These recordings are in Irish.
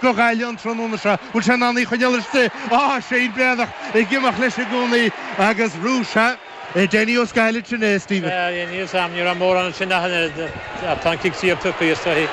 go Gaillimh an tráthnóna seo, bhuel, bhfuil sé in ann í a choinneáil istigh, á, Shane Breathnach ag imeacht leis i gcónaí agus Rúise, é Danny Ó Scathail, sin é, Stephen. Sea, níl a fhios a'm, ní raibh mórán ansin ach an oiread, ach tá an cic saor tugtha, is dóigh.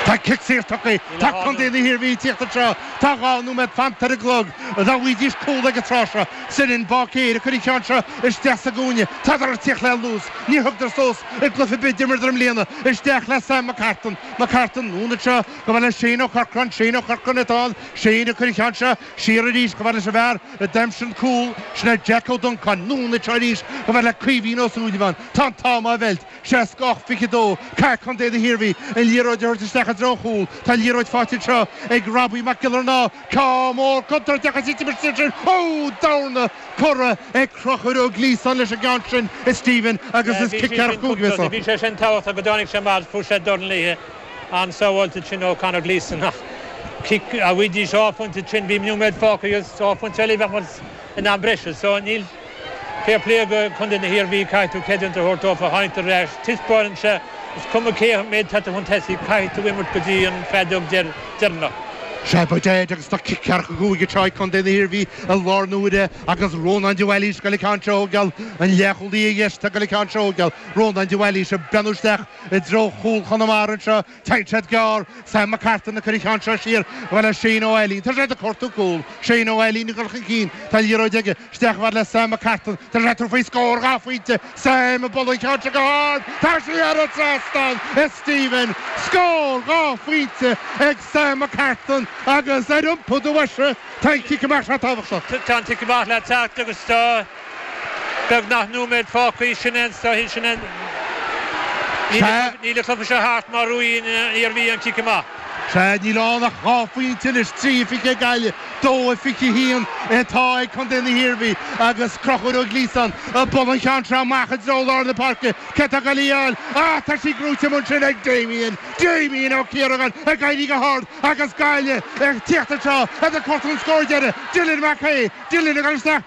Tá cic saor tugtha, tá contae na hIarmhí ag tíocht anseo, tá dhá nóiméad fanta ar an gclog, dá bhfaighidís cúl ag an tráth seo, Senan Báicéir ag cur an ceann seo isteach sa gcúinne, tádar ag tíocht le luas, níor thugadar suas i gcluiche ar bith, a d'imríodar i mbliana, isteach le Sam McCartan, McCartan, anonn anseo. chomh fada le Shane Ó Corcráin, Shane Ó Corcráin, tá Shane ag cur an ceann seo siar arís, chomh fada leis an bhfear a d'aimsigh an cúl sin, Jack Ó Duncan, anonn anseo arís, chomh fada le Caoimhín Ó Súilleabháin, tá an t-am á mheilt, 68-22, caithfidh Contae na hIarmhí, an liathróid a thabhairt isteach i dtreo an chúl, tá an liathróid faighte anseo ag Robbie Mac Giollarnáth, ceann mór contúirteach agus í ag titim isteach ansin, ó! Dorn curtha ag Conchúr Ó Gliasáin leis an gceann sin, a Stephen agus is ceathracha cúig a bhí anseo. Bhí sé sin tábhachtach go dtáinig sé mar fuair sé dorn léithe. an-sábháilte ansin, ó Connor Gleeson, ach cic dá bhfaighidís dhá phointe ansin bhí nóiméad fágtha agus dhá phointe eile a bheadh mar in am breise so níl fair play go Contae na hIarmhí caithfidh tú creidiúint a thabhairt dófa tháinig siad ar ais taispeánann anseo is cuma cé mhéad atá tú chun tosaigh caithfidh tú imirt go dtí an fheadóg deireanach. Sé Boyd Dead agus ceathracha cúig atá ag Contae na hIarmhí i láthair na huaire agus Rónán de Bhailís ag dul an ceann seo a thógáil, an leath-chúlaí ar dheis atá ag dul an ceann seo a thógáil, Rónán de Bhailís ag breathnú isteach. i dtreo chúl Chonamara anseo, téann siad gearr, Sam McCartan ag cur an ceann seo siar chomh fada le Shane Ó Ailín, tá sé ag cuartú cúl, Shane Ó Ailín ag dul chun cinn, tá an liathróid aige, isteach chomh fada le Sam McCartan, tá sé ag tabhairt faoi scór, dhá phointe, Sam ag bualadh an ceann seo go hard, tá sí thar an trasnán, a Stephen, scór, dhá phointe ag Sam McCartan agus ar iompú do bhoise, tá an cic amach seo tábhachtach. Tá an cic amach le teacht agus tá. beagnach nóiméad fágtha i sin é an stoitheadh sin é Sea. níl an cluiche seo thart má bhuann an Iarmhí an cic amach. Sea, níl ann ach dhá phointe anois, trí fiche ag Gaillimh, dó fiche haon atá ag contae na hIarmhí agus Conchúr Ó Gliasáin ag bualadh an ceann seo amach i dtreo lár na páirce cé atá ag dul í a fháil ach tá sí gnóite amuigh ansin ag Damien, Damien Ó Ciaragáin ag éirí go hard agus Gaillimh ag tíocht anseo iad ag cuartú an scór deiridh, Dylan Mac Aodha, Dylan ag dul isteach.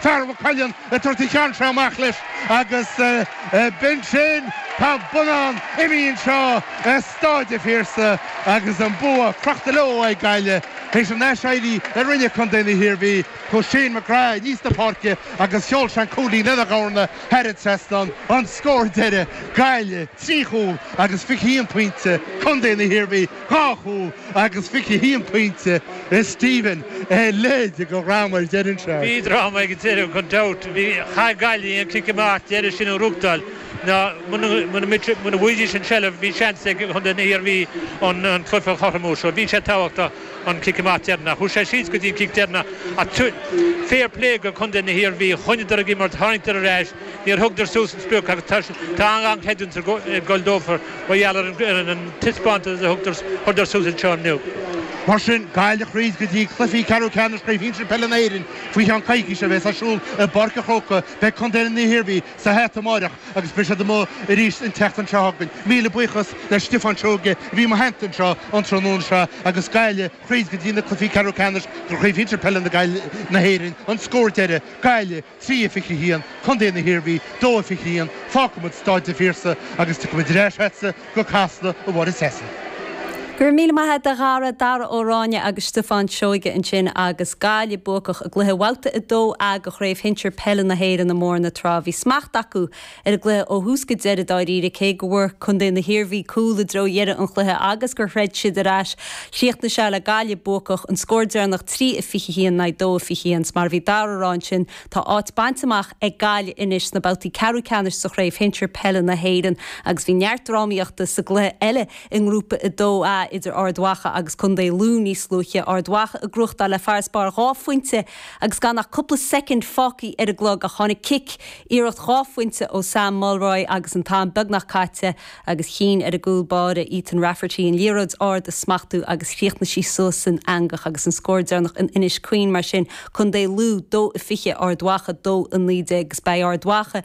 Fear Mhaigh Cuilinn ag tabhairt an ceann seo amach leis agus b'in sin, tá an bonnán imithe anseo ar Staid an Phiarsaigh agus an bua crochta leo ag Gaillimh tar éis an aiséirí a rinne contae na hIarmhí. Chuaigh Shane McGrath aníos an pháirc agus sheol seisean cúilín lena dhorn thar an trasnán, an scór deiridh, Gaillimh trí chúl agus fiche haon pointe, Contae na hIarmhí. dhá chúl agus fiche haon pointe a Stephen a leithéid de dhráma ar deireadh anseo. Bhí dráma ag an deireadh gan dabht. Chaith Gaillimh an cic amach deireadh sin a ghruachtáil ná muna bhfuighidís an seilbh bhí seans ag chontae na hIarmhí an cluiche a chothromú so bhí sé tábhachtach an cic amach deireannach. Chuaigh sé síos go dtí an cic deireannach ach fair play go contae na hIarmhí choinníodar ag imirt tháinigeadar ar ais Níor thugadar suas an sprioc agus tá an-an-chreidiúint ag gol dófa mar gheall ar an taispeántas a thugadar suas anseo inniu. Mar sin, Gaillimh thríd go dtí cluichí ceathrú ceannais Chraobh Shinsir Peile na h-Éireann faoi cheann coicíse a bhéas ar siúl i bPáirc a' Chrócaigh. Beidh Contae na hIarmhí sa hata amáireach agus beidh siad amuigh arís an tseachtain seo chugainn. Míle buíochas le Stiofán Seoige a bhí i mo theannta anseo an tráthnóna seo agus Gaillimh thríd go dtí na cluichí ceathrú ceannais Chraobh Shinsir Peile na hÉireann an scór deireadh, Gaillimh. trí a 21 contae na hIarmhí, dó a 21, fágfaimid Staid an Phiarsaigh agus tiocfaimid ar ais ortsa go Casla, a Mháire Treasa. Go raibh míle maith agat a Dhara, Dara Ó Ráinne agus Stiofán Seoige ansin agus Gaillimh buacach i gcluiche Bhabhta 2A de Chraobh Shinsir Peile na hÉireann i mBóthar na Trá. Bhí smacht acu ar an gcluiche ó thús go deireadh dáiríre, cé go bhfuair contae na hIarmhí cúl i dtreo dheireadh an chluiche agus gur throid siad ar ais. Chríochnaigh sé le Gaillimh buacach, an scór deireanach 3 a 21 in aghaidh 2 a 21. 's mar a bhí Dara ag rá ansin, tá áit bainte amach ag Gaillimh anois sna babhtaí ceathrú ceannais sa Chraobh Shinsir Peile na hÉireann agus bhí neart drámaíochta sa gcluiche eile i nGrúpa 2A idir Ard Mhacha agus Contae Lú níos luaithe, Ard Mhacha ag gruachtáil le farasbarr dhá phointe. Agus gan ach cúpla soicind fágtha ar an gclog ach tháinig cic, iarracht dhá phointe ó Sam Mulroy agus an t-am beagnach caite, agus chinn ar an gcúl báire Ethan Rafferty an liathróid ard a smachtú agus chríochnaigh sí suas san eangach agus an scór deireanach in Inis Caoin. Mar sin, Contae Lú, 2-20, Ard Mhacha, 2-19, agus beidh Ard Mhacha